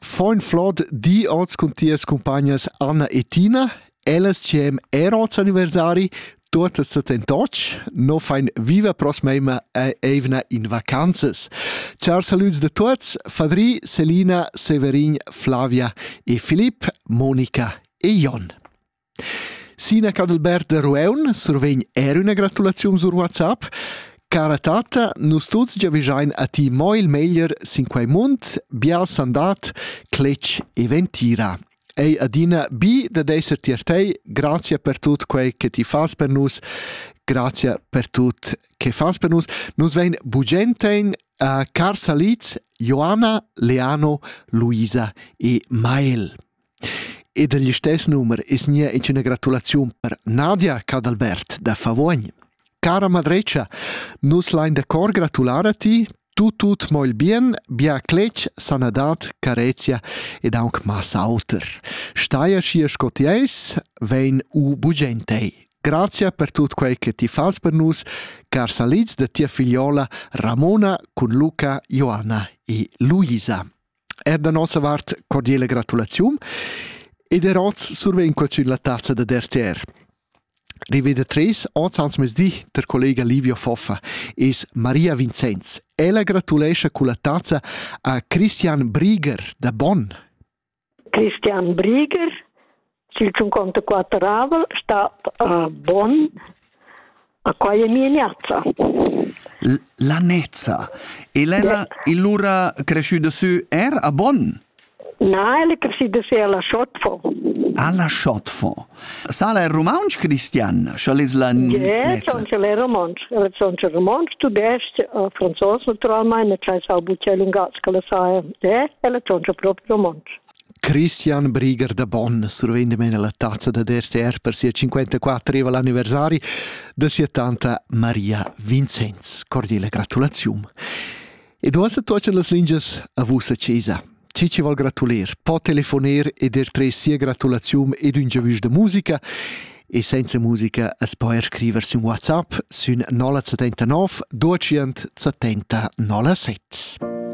Foin flod di oz cun tias cumpagnas Anna e Tina. Ellas cem er oz anniversari, tuottas settentoc, no fain viva prosmeima eivna in vacanzas. Char salüds da tuots, Fadri, Selina, Severin, Flavia e Filip, Monica e Jon. Sina Cadalbert da Rueun survegn er üna gratulaziun sur WhatsApp. Cara tata, nus tuts giavischein a ti mo il meglier sin quei mund, bia sandat, cletg e ventira. Ei adina bi da esser tier tei, grazia per tut quei che ti fas per nus, grazia per tut che fas per nus. Nus vein bugentein a Carsa Liz, Joanna, Leano, Luisa e Mael. Ed egl istess numer es gnir inch üna gratulaziun per Nadia Cadalbert da Favogn. Cara madretscha, nus lain da cor gratular a ti, tut tut mo il bien, bia cletg, sanadad, carezia ed aunc massa auter. Stai aschi sco ti eis, vegn u bugent ei. Grazia per tut quei che ti fas per nus, car salids da tia figliola Ramona cun Luca, Joanna e Luisa. Er da nossa vart cordiela gratulaziun ed er oz survegn quel sün la tazza da DRTR. Riveda tres oz ans mesdi der collega Livio Foffa es Maria Vincenz. Ella gratulescha culla tazza a Christian Brieger da Bonn. Christian Brieger Ch'il tschunconta quatteravel stat uh, bon, a quai è mia niazza. La nezza. E l'ella illura cresciuta sü er a Bonn? Na, elle è cresciuta sü alla Schotfo. Alla Schotfo. Sala è romansch, Christian? Schall es la yeah, son ce l'è romansch. Elle son ce romansch, tudesc, franzos naturalmente, c'è sau bucè lungas che la sa è. Eh, elle son ce proprio romansch. Christian Brigger da Bonn survegn damen la tazza da DRTR per sia 54eva anniversari da sia tanta Maria Vincenz. Cordiale gratulazium. E do asa tuochen las lingias a vusa chesa. Ci ci vol gratuler, po telefoner e der tre sia gratulazium ed un giavüsch da musica e senza musica as po er scriver sün WhatsApp sün 079 270 007.